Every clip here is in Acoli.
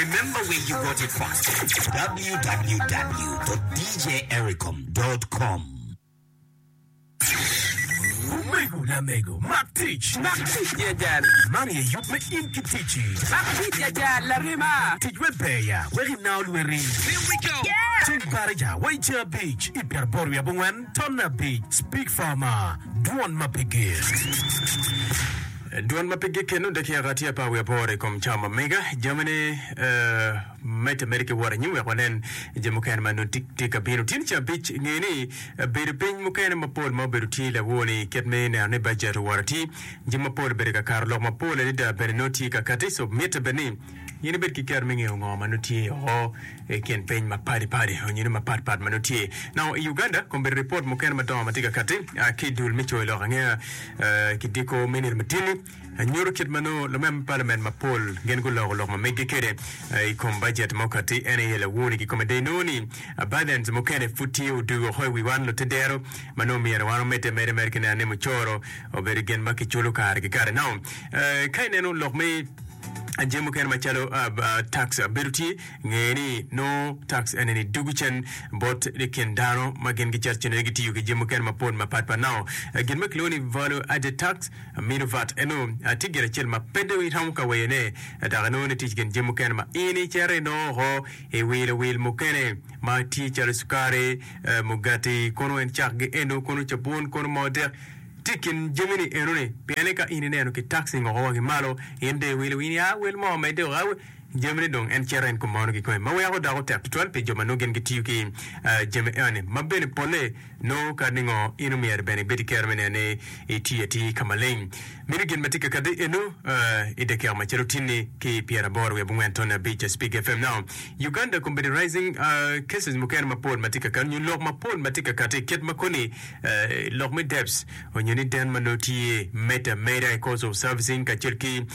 Remember where you got it from www.djericom.com Omego lamego, mak tic! Mak tic jajal. Man aye yub me in ki ticci. Mak tic jajal, larema. Tic wek ber ya, wek inao lweti. Here we go! Ceng Barija wa i ceng abic i pyeraboro wiye abongwen, ton me abic, Speak Farmer, dwon ma pe ger. Dwan ma pigi keno dek yaka tye apar wiye aboro i kom cawa ma mega. Jamine me te mede ki wot anyim wek wanen je mukene ma nongo tye ka bino. Tye ni ca abic nge ni bedo piny mukene ma pol ma obedo tye lawo ni kit me neno ni bajet owor atir. Jami ma pol obedo ka kato lok ma pol adada bene nongo tye ka kati so mite bed ni. Nyen ibed ki kero me ngeyo ngo ma nongo tye o i kin piny ma padi padi onyo ni mapat pat ma nongo tye nao i Uganda. Kombeddi ripot mukene madongo ma tye ka kati ki dul me coyo lok angeya ki diko me nino matini nyuto kit ma nongo lumema me palament mapol gin guloko lok ma meggi kede i kom bajet ma okati en aye lawoni. Kikome dong inongo ni bajets mukene pud tye odugo oko i wi wan lute dero ma nongo myero wan omedde ameda mere ki neno ni mucoro obedo gin ma kiculo kare ki kare. Nao ka ineno lok me. Jami mukene macalo tax bedo tye, ngeye ni nongo tax eni dugu cen bot i kin dano ma gin gicato cen aye gitiyo ki jami mukene mapol mapat pat nao. Gin ma kilwongo ni value added tax, mino vat, eno tye gin acel ma pe dong iromo ka weyone dok inongo ni tic gin jami mukene ma in icito inongo oko iwilo wil mukene ma tye calo cukari, mugati, kono en cakgi eno, kono cabun, kono moo dek. Tye i kin jami-ni enoni, pienni ka in ineno ki taxi ngoko wangi malo, in dong iwilo in ya wel mo medde o awe jamine dong en cito en kumono kikome ma weko dako tek tutwal pi jo ma nongo gin gitiyo ki jami enoni ma bene polle nongo kadi ningo in omyero bene ibedi kero me neno ni itiyo atir ka maleng. Mini gin ma tye ka kati eno i dakika ma cito tinni ki pyera aboro wiye bungwen tone abic Speak FM now Uganda Computerizing cases mukene mapol ma tye ka kati nyo lok mapol ma tye ka kati kit ma koni Lok me debts onyo ni den ma nongo tye made a made a cost of servicing kacel ki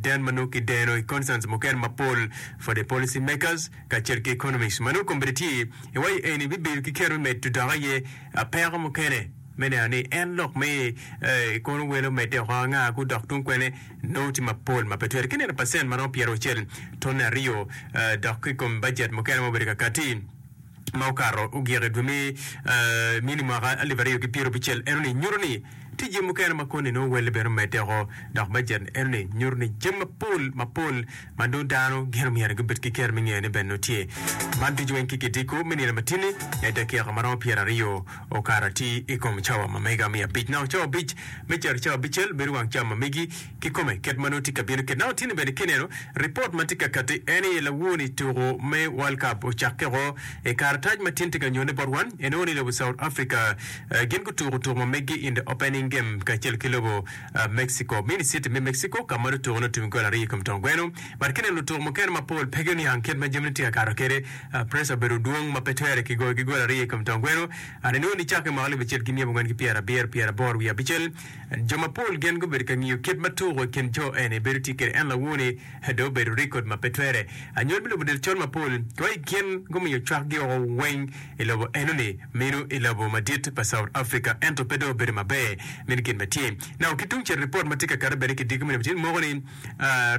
den ma nongo kideno i concerns mukene mapol for the policy makers kacel ki economists ma nongo kombeddi tye i wa eni bibedo ki kero me medo dok aye peko mukene me neno ni en lok me kono welo medde oko anga ku dok tung kwene nongo tye mapol ma pe twere ki neno percent ma romo pyeraucel tone aryo dok ki kom budget mukene ma obedo kakati. ma okato ogik i dwe me Mini mwaka alip aryo ki pyera abicel enoni nyuto ni tye jami mukene ma koni nongo welle bene omedde woko dok bajet enoni nyuto ni jami mapol mapol ma nongo dano gin omyero gibed ki kero me ngeyo ni bene nongo tye. Man ducu weng ki gidiko me nino matini ne dakika ma romo pyera aryo okato atir i kom cawa ma mega me abic. Nongo cawa abic me cito cawa abicel bedo wang cawa ma megi. kikome kit ma nongo tye ka bino kit na otini bene ki neno ripot ma tye ka kati en aye lawoni tuko me world cup ocakke woko i karatac ma tin tye ka nyone bot wan en aye ni lobo south Africa gin gutuko tuko ma megi in the opening game kacel ki lobo Mexico mini city me Mexico ka ma lutuko ni otum gol aryo ikom tong gweno but kineno lutuko mukene mapol pe guniang kit ma jamine tye ka kato kede pressure obedo dwong ma pe twere kigoyo ki gol aryo ikom tong gweno and inongo ni cake mako libo acel ki myel angwen ki pyera abiro pyera aboro wiye abicel Jo mapol gin gubedo ka ngiyo kit ma tuko i kin jo eni bedo tye kwede en lawo-ni dong obedo rekod ma pe twere. Anyol me lobo del col mapol wa i kin gumiyo cwakgi woko weng i lobo enoni meno i lobo madit pa South Africa ento pe dong obedo maber. Meno gin ma tye. Nako ki tungcel ripot ma tye ka kati bene ki diki moni matidi moko ni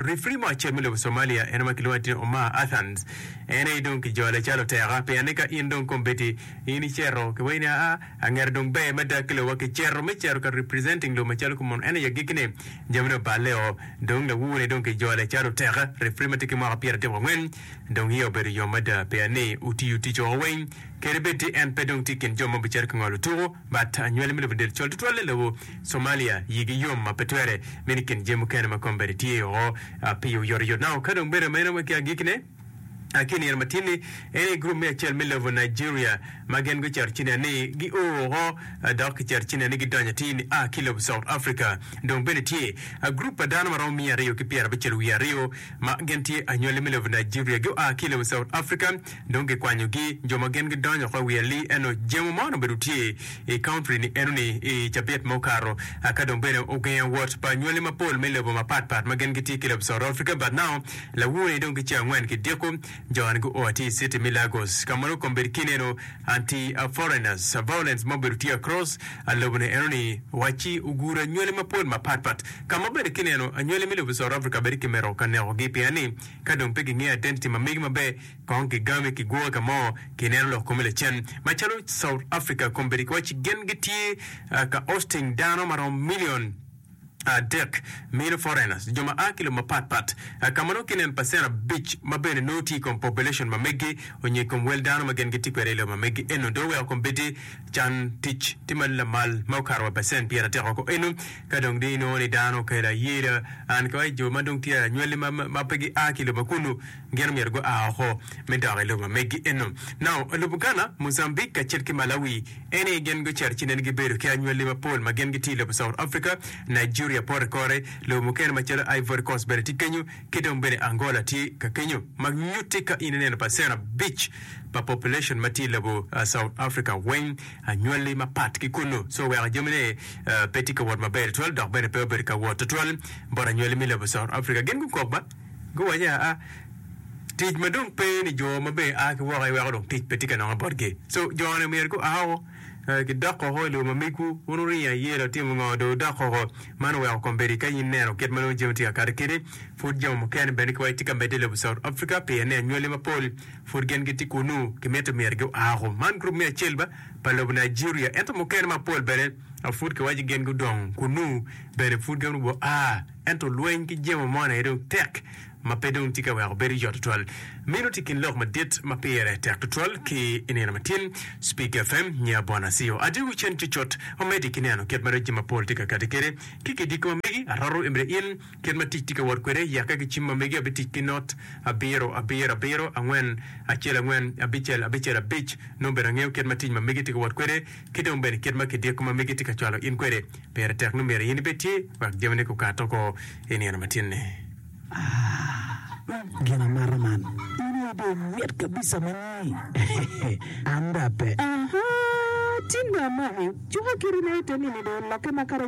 refri mo acel me lobo Somalia en ma kilwongo ni Omar Athans en aye dong kijole calo oteka pien ni ka in dong kombeddi in iceto kiwaci ni aa Angera dong ber me dag ki lowa ki cito me cito ka representing low macalo ki mono en aye agikki ni jami ni oballe o dong lawur ni dong ki jole calo oteka refri ma tye ki mwaka pyera dek wa ngwen dong iya obedo yom mada pea ni otiyo tic oko weng kede bed ti en pe dong ti kin jo ma obicito ki ngolo tuku but anywali me lobo del col tutwal ni lobo Somalia yi gi yom ma pe twere mini kin jami mukene ma kombeddi tye oko pi oyotoyot nao ka dong bed ameno ma ki agikki ne Ki i nino matin-ni, en aye gurup me acel me lobo Nigeria ma gin gucito Cinia ni gio woko dok gicito Cinia ni gidonyo atir ni a ki lobo South Africa. Dong bene tye agurup pa dano ma romo miya aryo ki pyera abicel wiye aryo ma gin tye anywali me lobo Nigeria. Gua ki i lobo South Africa dong gikwanyogi. Jo ma gin gidonyo woko i wi ali eno jemo man obedo tye i county ni eno-ni i cabit ma okato. Aka dong bene ogengo wot pa anywali mapol me lobo mapat pat ma gin gitye ki i lobo South Africa but now Lawur-ri dong ki ceng angwen ki dyeko, jo-ni gua ki i city mi Lagos, ka ma nongo kombedi kine eno anti a foreigners, a violence ma obedo tye across a lobo ni eno ni wacci ogudo anywali mapol mapat pat, ka ma bene kine eno anywali mi lobo South Africa bedi ki mito ka neko gi pien ni ka dong pe gingeyo identity ma megi maber kong ki game ki gwoke ka mo ki neno lok kome lacen. Ma calo South Africa kombedi ki wacci gin gitye ka hosting dano ma romo million adek, Mino foreigners, jo ma a ki lobo mapat pat, ka ma nongo kinen pacen abic ma bene nongo tye i kom population ma megi onyo i kom wel dano ma gin gitye kwede i lobo ma megi eno dong oweko kombeddi can tic tye ma lamal ma okato wa pacen pyer adek woko eno ka dong di nongo ni dano okelo ayera and ki wa i jo ma dong tye anywali ma pe gi a ki lobo ma kunu. gin omyero gua oko me dok i lobo megi eno. Nongo, lubo Gana, Muzambik, kacel ki Malawi eni gin gucito ci nen gibedo ki anywali mapol ma gin gitye i lobo South Africa, Nigeria pote kore, lobo mukene macalo Ivory Coast bene tye kenyo, ki dong bene Angola tye ka kenyo, ma nyutti ka in ineno pacen abic pa population ma tye i lobo South Africa weng anywali mapat ki kunnu. So weko jamine pe tye ka wot maber tutwal dok bene pe obedo ka wot tutwal bot anywali me lobo South Africa. Gin gukok ba? Guwaco ni, Aa, tic ma dong pe ni jo ma be a ki woko iweko dong tic pe tye ka nonge botgi. So, jo-ni myero gua woko, gidok koko i lobo ma migwu. Wun wurinya i yelo, wutimo ngo, dong wudok koko. Man oweko kombeddi ka in ineno kit ma nongo jami tye ka kati keni. Pud jami mukene bene kiwaco tye ka medde i lobo South Africa pien ni anywali mapol pud gin gitye kunnu. Kimito myero gua woko. Man gurup me acel ba pa lobo Nigeria. Ento mukene mapol bene pud kiwaco ni gin gudong kunnu bene pud gin gua. Ento lweny ki jemo moni aye dong tek ma pe dong tye ka weko bedo yot tutwal. Meno tye i kin lok madit ma pire tek tutwal ki i nino matin. Speak FM, Nya Bon Asio, Adii wi cen cutcut ma medi ki neno kit ma rec jami mapol tye ka kati kwede. Ki gidiko ma megi, aroto emede in, kit ma tic tye ka wot kwede, yakke ki cim ma megi abitic ki not abiro, abiro, abiro, angwen, acel, angwen, abicel, abicel, abic, nongo bene angeyo kit ma tic ma megi tye ka wot kwede. ki dong bene kit ma kidiko ma megi tye ka cwalo in kwede, pire tek nongo myero in ibed tye wek jamine gukat oko i nino matinni. Aa, gin amata man! In aye dong mit kabisa ma nyi! An dong ape. Aa, tin dong amaki! Cuka kite na ite nini dong olokke makato.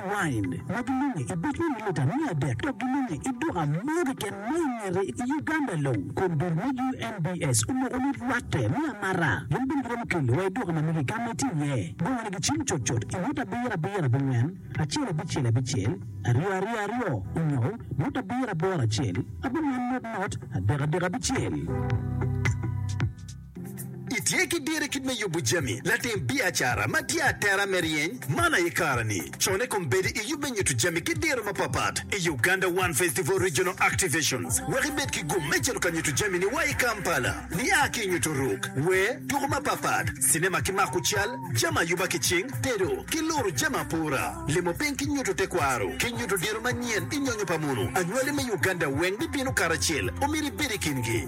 Wine, ma gilunge i bocme me lita miya adek dok gilunge i duka mo keken ma i ngete i Uganda long. Kombir me UNBS omoko ni rwatte me amara gin bene giromo kelo wa i duka ma mege ka ma itye iye. Bongo ni gicim cut cut i mot abiro abiro abongwen acel abicel abicel aryo aryo aryo onyo mot abiro aboro acel abongwen mot mot adek adek abicel. Itye ki diri kit me yubu jami latim biacara ma tye atera me ryeny man aye kara ni. Con i kom bedi i yub me nyutu jami ki diro ma pat pat i Uganda One Festival Regional Activations wek ibed ki gum me cito ka nyutu jami ni wa i Kampala. Ni a ki i nyutu ruk, wer, tuku ma pat pat, cinema ki mako cal, jami ayuba ki cing, tedo, ki luru jami apura. Limo piny ki nyutu te kwaro ki nyutu diro manyen i nyonyo pa munu anywali me Uganda weng bi binu kara cel omyero ibedi kingi.